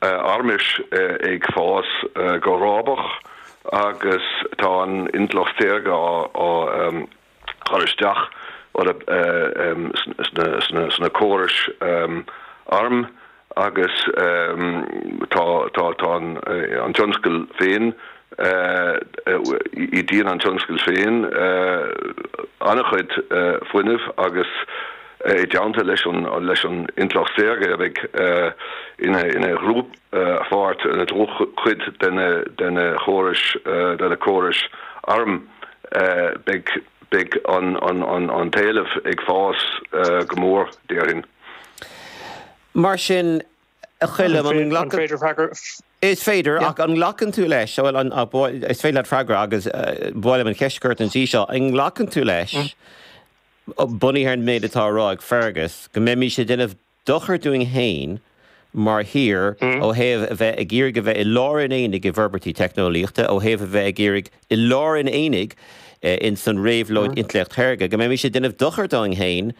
armas ag fás go rábach agus tá an intleacht saorga á chur isteach sna córais airm agus tá an tionscal féin, ídíonn an tionscal féin an-chuid fuinnimh agus. i dteannta leis an intleacht saorga a bheidh ina dhlúthpháirt, ina dlúthchuid de na córais arm, beidh an t-éileamh ag fás go mór, déarfainn. Mar sin, a Choilm, an nglacann. Is féidir, ach an nglacann tú leis, is féidir leat freagra agus buailim an cheist chugat ansin, an nglacann tú leis, Bunaithe ar an méid atá á rá ag Fergus, go mbeimís ag déanamh dochar dúinn féin mar thír ó thaobh a bheith ag iarraidh a bheith i lár an aonaigh i bhforbairtí teicneolaíochta, ó thaobh a bheith ag iarraidh i lár an aonaigh in san réabhlóid Intleacht Shaorga, go mbeimís ag déanamh dochar dúinn féin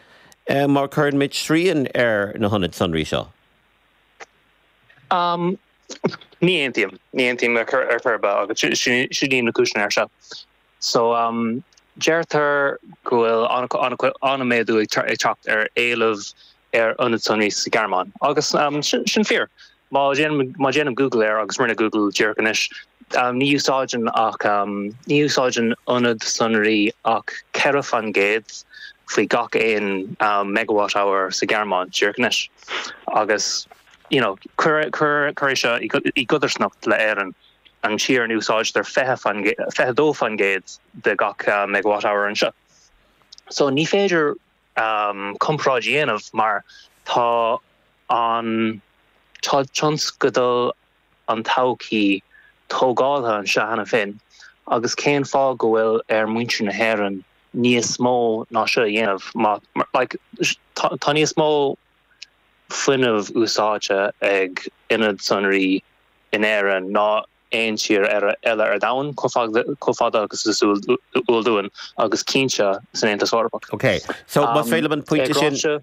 má chuireann muid srian ar na hionaid sonraí seo. Ní aontaím. Ní aontaím ar chor ar bith agus seo iad na cúiseanna air seo. So, deirtear go bhfuil an-méadú ag teacht ar éileamh ar ionaid sonraí sa Ghearmáin. Agus sin fíor. Má dhéanaim Google air, agus rinne mé Google díreach anois, ní úsáideann ach, ní úsáideann ionad sonraí ach ceithre faoin gcéad faoi gach aon megawatt hour sa Ghearmáin díreach anois. Agus, you know, cuir é seo i gcodarsnacht le Éirinn. an tír ina n-úsáidtear 22% de gach megawatt-hour anseo so ní féidir comparáid a dhéanamh mar tá an tá tionscal an todhchaí tógáltha anseo cheana féin agus cén fáth go bhfuil ar muintir na hÉireann níos mó ná seo a dhéanamh má like tá níos mó fuinneamh úsáidte ag ionaid sonraí in Éirinn ná aon tír eile ar domhan, chomh fada agus is eol dúinn, agus cinnte san Aontas Eorpach. Ok, so más féidir liom,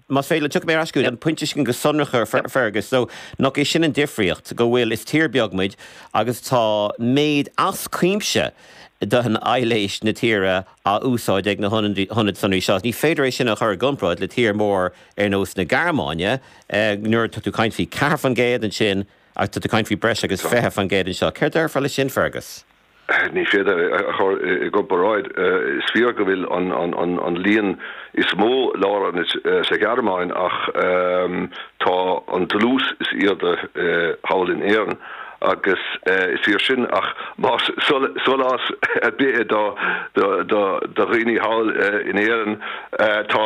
más féidir liom, tiocfaidh mé ar ais chugat, an pointe sin go sonrach ar Fergus, so nach é sin an difríocht, go bhfuil, is tír beag muid agus tá méid as cuimse de aibhléis na tíre á úsáid ag na hionaid sonraí seo. Ní féidir é sin a chur i gcomparáid le tír mór ar nós na Gearmáine, nuair atá tú ag caint faoi ceathair faoin gcéad ansin agus tá tú ag caint faoi breis agus fiche faoin gcéad anseo. Céard déarfá leis sin, Fergus? Ní féidir é a chur i gcomparáid. Is fíor go bhfuil an líon is mó lárionaid sa Ghearmáin ach tá an dlús is airde thall in Éirinn. agus is fíor sin, ach más sólás ar bith é do dhaoine thall in Éirinn, tá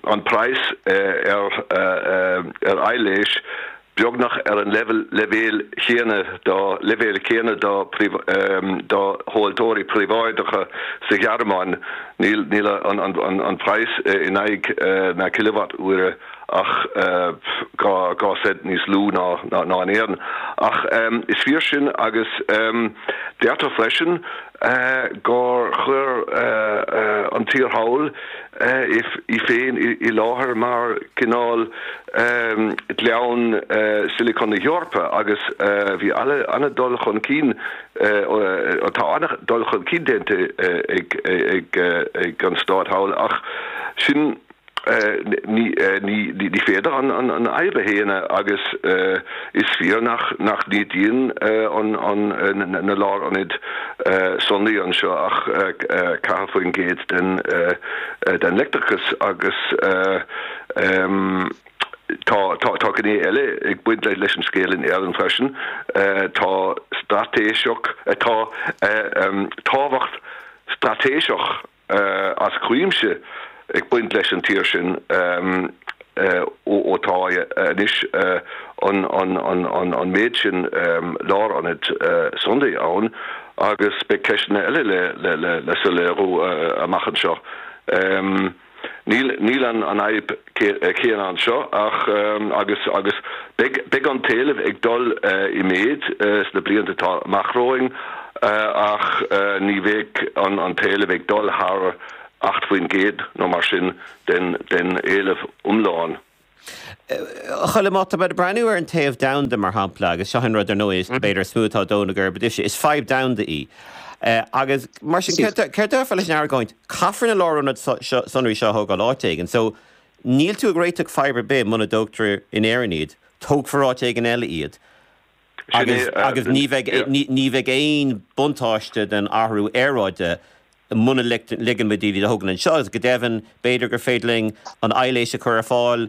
an praghas ar aibhléis beagnach ar an leibhéal, leibhéal céanna do leibhéal céanna do do thomhaltóirí príobháideacha sa Ghearmáin. Níl an praghas in aghaidh na cileavat-uaire ach dhá cent níos lú ná in Éirinn. Ach is fíor sin agus déarfá freisin gur chuir an tír thall í féin i láthair mar chineál Ghleann Silicon na hEorpa agus bhí an-dul chun cinn, tá an-dul chun cinn déanta ag an stát thall ach sin. Ní féidir an fhadhb a shéanadh agus is fíor nach n-ídíonn na lárionaid sonraí anseo ach 4% den leictreachas agus tá gné eile ag baint leis an scéal in Éirinn freisin, tá straitéiseach, tá tábhacht straitéiseach. eh, as cuimse ag baint leis an tír sin eh, ó, ó tá eh, anois eh, an, an, an, an, an méid sin eh, lárionaid eh, sonraí ann agus beidh ceisteanna eile le, le, le, le soiléiriú eh, amach anseo. Em, Níl, níl an, an fhadhb eh, céanna anseo ach agus agus beidh an t-éileamh ag dul i méid sna blianta atá amach romhainn ach ní bheidh an an t-éileamh ag dul thar 8 faoin gcéad nó mar sin den den éileamh iomlán. A Choilm, má tá muid ag breathnú ar an téamh domhanda mar shampla agus seo an rud ar ndóigh is b'fhéidir is mó atá ag dó na geirbe duitse, is fadhb domhanda í agus mar sin céard a déarfá leis an argóint, Caithfear na lárionaid sonraí seo a thógáil áit éigin so níl tú ag réiteach fadhb ar bith muna dtógtar in Éirinn iad, tógfar áit éigin eile iad agus ní bheidh aon buntáiste don athrú aeráide muna ligeann muid iad a thógáil anseo agus go deimhin b'fhéidir gur féidir linn an aibhléis a chur ar fáil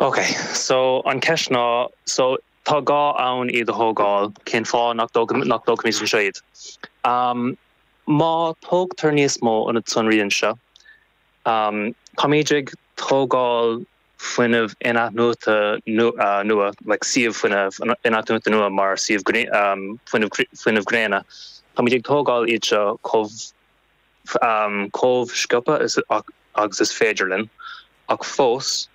Ok, so an cheist ná, so tá gá ann iad a thógáil, cén fáth nach dtógfaimid anseo iad? Am, Má tógtar níos mó ionad sonraí anseo, am, táimid ag tógáil fuinneamh in-athnuaite nua, like suíomh fuinnimh in-athnuaite nua mar suíomh fuinnimh gréine, táimid ag tógáil iad seo chomh. chomh sciobtha agus is féidir linn, ach fós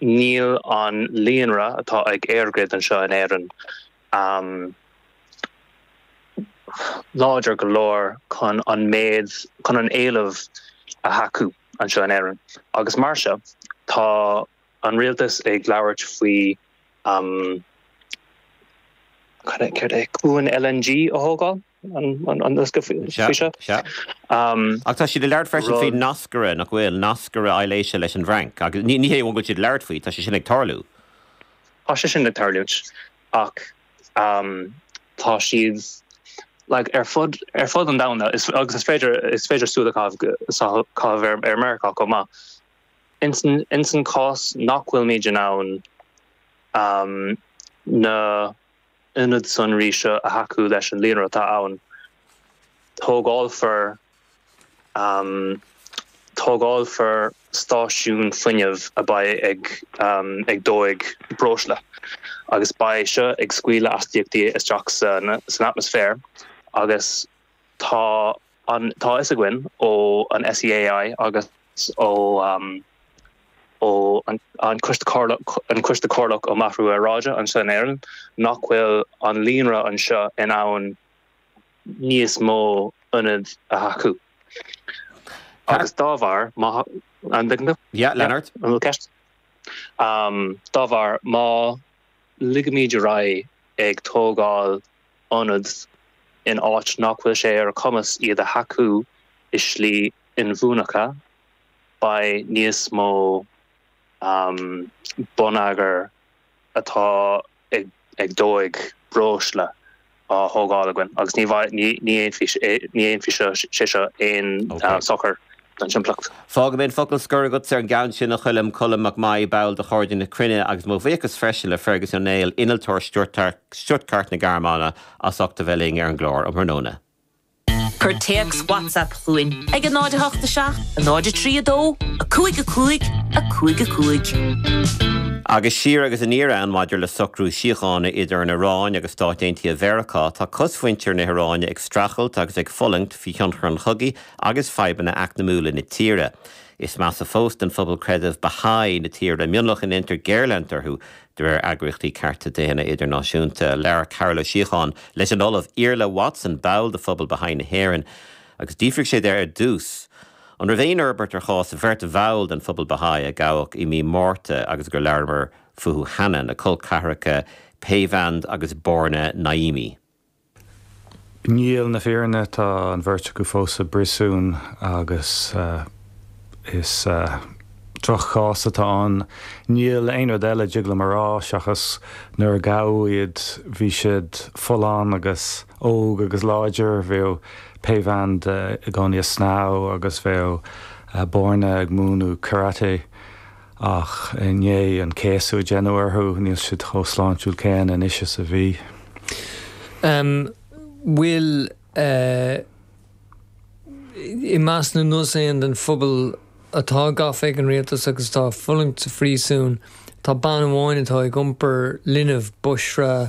níl an líonra atá ag EirGrid anseo in Éirinn láidir go leor chun an méid, chun an éileamh a thacú anseo in Éirinn agus mar seo tá an rialtas ag labhairt faoi am, céard é, cuan LNG a thógáil. Ach tá siad ag labhairt freisin faoi nascaire, nach bhfuil? Nascaire aibhléise leis an bhFrainc. Agus ní hé an bhfuil siad ag labhairt faoi, tá sé sin ag tarlú. Tá sé sin ag tarlúint ach tá siad ar fud an domhain agus is féidir súil a chaitheamh ar Mheiriceá chomh maith. Insan chás nach bhfuilimid in ann na. ionad sonraí seo a thacú leis an líonra atá ann. Tógálfar Tógálfar stáisiún fuinnimh a beidh ag ag dóigh breosla agus beidh seo ag scaoileadh astaíochtaí isteach san atmaisféar agus tá Tá fhios againn ó an SEAI agus ó, am, an Coiste Comhairleach um Athrú Aeráide anseo in Éirinn nach bhfuil an líonra anseo in ann níos mó ionad a thacú agus dá bharr má an dtig liom? Yeah Leonard. An bhfuil ceist? Dá bharr má ligimid ar aghaidh ag tógáil ionad in áit nach bhfuil sé ar a chumas iad a thacú i slí inbhuanaithe, beidh níos mó bonneagair atá ag dóigh breosla á thógáil againn agus ní dhéanfaidh sé seo aon sochar An simpliocht. Fágfaidh mé an focal scoir agat ar an gceann sin, a Choilm, Colm Mac Maí, ball de Chairde na Cruinne, agus mo bhuíochas freisin le Fergus Ó Néill, innealtóir Stuttgart na Gearmáine, as ucht a bheith linn ar an gclár um thráthnóna. Cuir téacs WhatsApp chugainn ag 08 7 03 2 5 5 5 5. Agus é siar agus aniar ann maidir le socrú síochána idir an Iráin agus Stáit Aontaithe Mheiriceá, tá cosmhuintir na hIráine ag streachailt agus ag fulaingt faoi thionchar an chogaidh agus fadhbanna eacnamúla na tíre. Is measa fós do phobal creidimh Baha'i na tíre, mionlach a ndeintear géarleanint orthu de réir eagraíochtaí cearta daonna idirnáisiúnta. Labhair Carol Ó Síocháin leis an Ollamh Iarlaith Watson, ball de Phobal Baha'i na hÉireann, agus d'fhiafraigh sé de ar dtús, an raibh aon fhorbairt ar chás bheirt bhall den phobal Baha'i a gabhadh i mí Márta agus gur labhramar fúthu cheana, na col ceathracha Peyvand agus Borna Naimi. I ndomhnach na fírinne tá an bheirt acu fós sa bpríosún agus is drochchás atá ann. Níl aon rud eile a dtig liom a rá seachas nuair a gabhadh iad bhí siad folláin agus óg agus láidir, bheadh Peyvand i gcónaí ag snámh agus bheadh Borna ag múineadh karate. Ach i ndiaidh an céasadh a deineadh orthu, níl siad chomh sláintiúil céanna anois is a bhí. An bhfuil i measc na ndaoine den phobal atá gafa ag an rialtas agus atá ag fulaingt sa phríosún, tá bean amháin atá ag iompar linbh, Boshra.